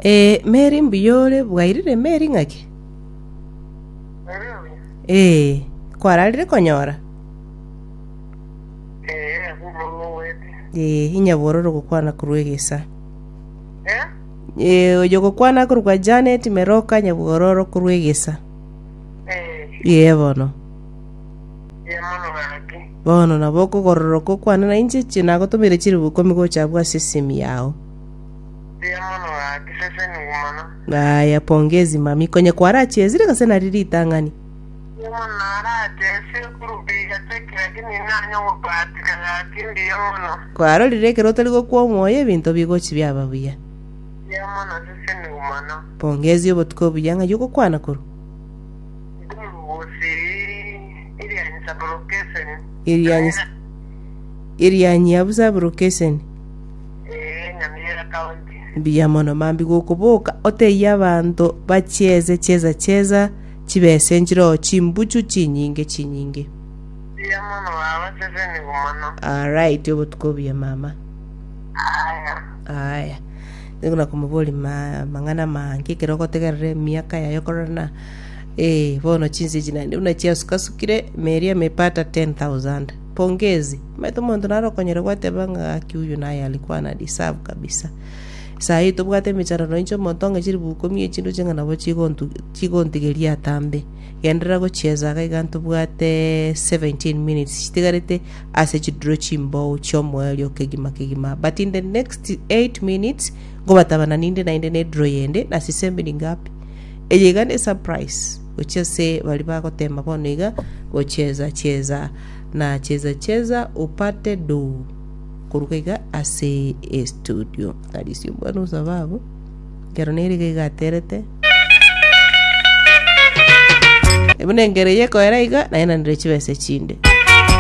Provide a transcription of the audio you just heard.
Ee, Mary mbuya ore, bwairire Mary ng'ake? Ee, kwararire konyora? Ee, inyabora ore gokwana korwa egesa. Ee, oyo gokwana korwa kwa Janet Meroka nyabora oro korwa egesa. Ee, bono. Bono nabo okogororoka okwane na inche chi nagotomeire chilifu ikomi gocha abwo ase esimi yao. Mbuya mono gaki sese nigo mono. Ng'aya pongezi mami, konye kwarachesire gase nari ritang'ani. Mbuya mono narache sekuru mbuya teki lakini nanya ogobatika gaki mbuya mono. Kwarorire ekero otari gokwa omoyo ebinto bigochi biaba buya. Mbuya mono sese nigo mono. Pongezi obotuko obuya ng'ai ogokwana korwa. Ndi morugosi Irianyi Saburokeseni. Irianyi Irianyi abu Saburokeseni. Ee, nyamira kaunti. Mbuya mono mambia gokoboka otebie abanto bachieze chieza chieza chibese nchiroho chimbuchu chinyinge chinyinge. Mbuya mono baba sesenigu mono. Alright obotuko obuya mama. Aya. Aya. Nigo nakomoboria ma, mang'ana mange ekero ogotegerera emiaka yaye okorora na eh bono chinsa echi naende buna chiasukasukire meri ame epata 10000. Pongezi. Omanyete omonto nare okonyora gwateba ng'a gaki huyu naye alikuwa ana deserve kabisa. Saa hii tobwate emecharero inche omonto ong'e chilifu ikomi echinduche ng'a nabo chigontu chigontigeria atambe. Genderera gochieza iga iga ntobwate 17 minutes chitigarete ase chiduro chimbou chiomoerio kegima kegima but in the next 8 minutes ngobatabana ninde nainde neduro yende nasisembe ningapi. Eye iga ne surprise. gochia ase baria bagoteema bono iga, Gocheza, cheza, na Cheza, cheza, upate do, koruga iga ase estudio. Arisia omwana o sababu, ekero nere iga iga aterete, Buna engeri eye ekoera iga, naye nanire chibesa echinde.